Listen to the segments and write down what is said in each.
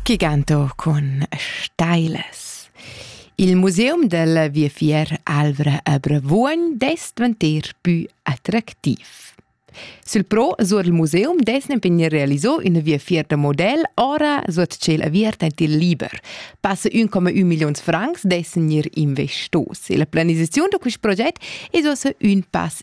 Giganto cun stailas. Il museum del Viafier Alvra a Bravuogn dess dvanter pü attractiv. Sul pro sur il museum desnen vegnir realiso ina viafier da model ora sur tschel aviert ent il liber. Passe 1,1 millions francs dessen ir investos. E la planisazione da quest proget es ossa ün pass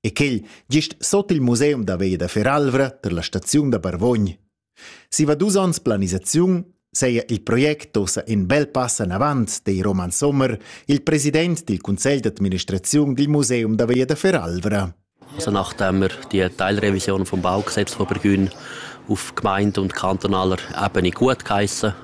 E quel gist sot il museum da veglia da Feralvra per la staziun da Barvogn. Siva dus onns planisaziun seia il project ossa in bel pass anavant dei Roman Sommer, il president dil Conselj d'administraziun dil Museum da Veglia da Feralvra. Also nachdem wir die Teilrevision vom Bau Gesetzhobergrün auf Gemeinde und kantonaler Ebene gut geheissen,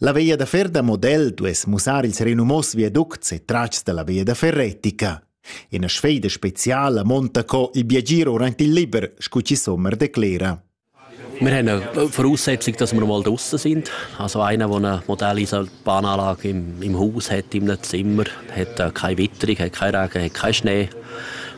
La via da fer da model duess mussar ils renumos viaducts e tratgs dalla via da fer retica. Ina sfeida speciala monta co il biagir orant il liber, scu chi Sommer declera. Wir haben eine Voraussetzung, dass wir mal draußen sind. Also einer, der eine Modellisalbananlage im, im Haus hat, in einem Zimmer, hat äh, keine Witterung, hat keinen Regen, hat keinen Schnee.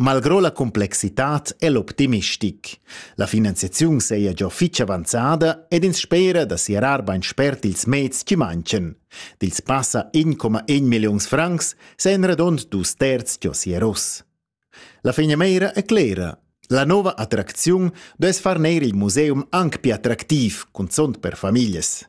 Malgrò la complexitad e l'optimistic. La finanziaziun seia già fitg avanzada ed ins spera da sierar bain spert ils meds che manchen. Dils passa 1,1 milliuns francs seien radond dus terz già sieros. La fegnameira è clera. La nova attracziun duess far neir il museum anc più attractiv, cunzont per famiglies.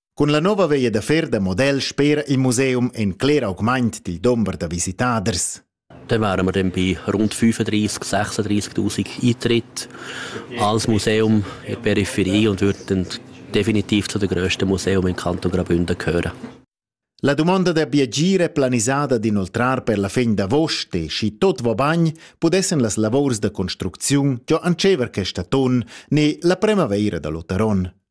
Cun la nova veia da fer da model spera il museum en cler augment dil dumber da visitaders. Dann wären wir dann bei rund 35.000, 36.000 Eintritte als Museum in der Peripherie und würden definitiv zu den grössten Museen im Kanton Graubünden gehören. La domanda da biagire planisada d'inoltrar per la fin d'avost e schi tot va bagn pudessen las lavors da construcziun giò antschever questa ton ne la primavaira da l'Otaron.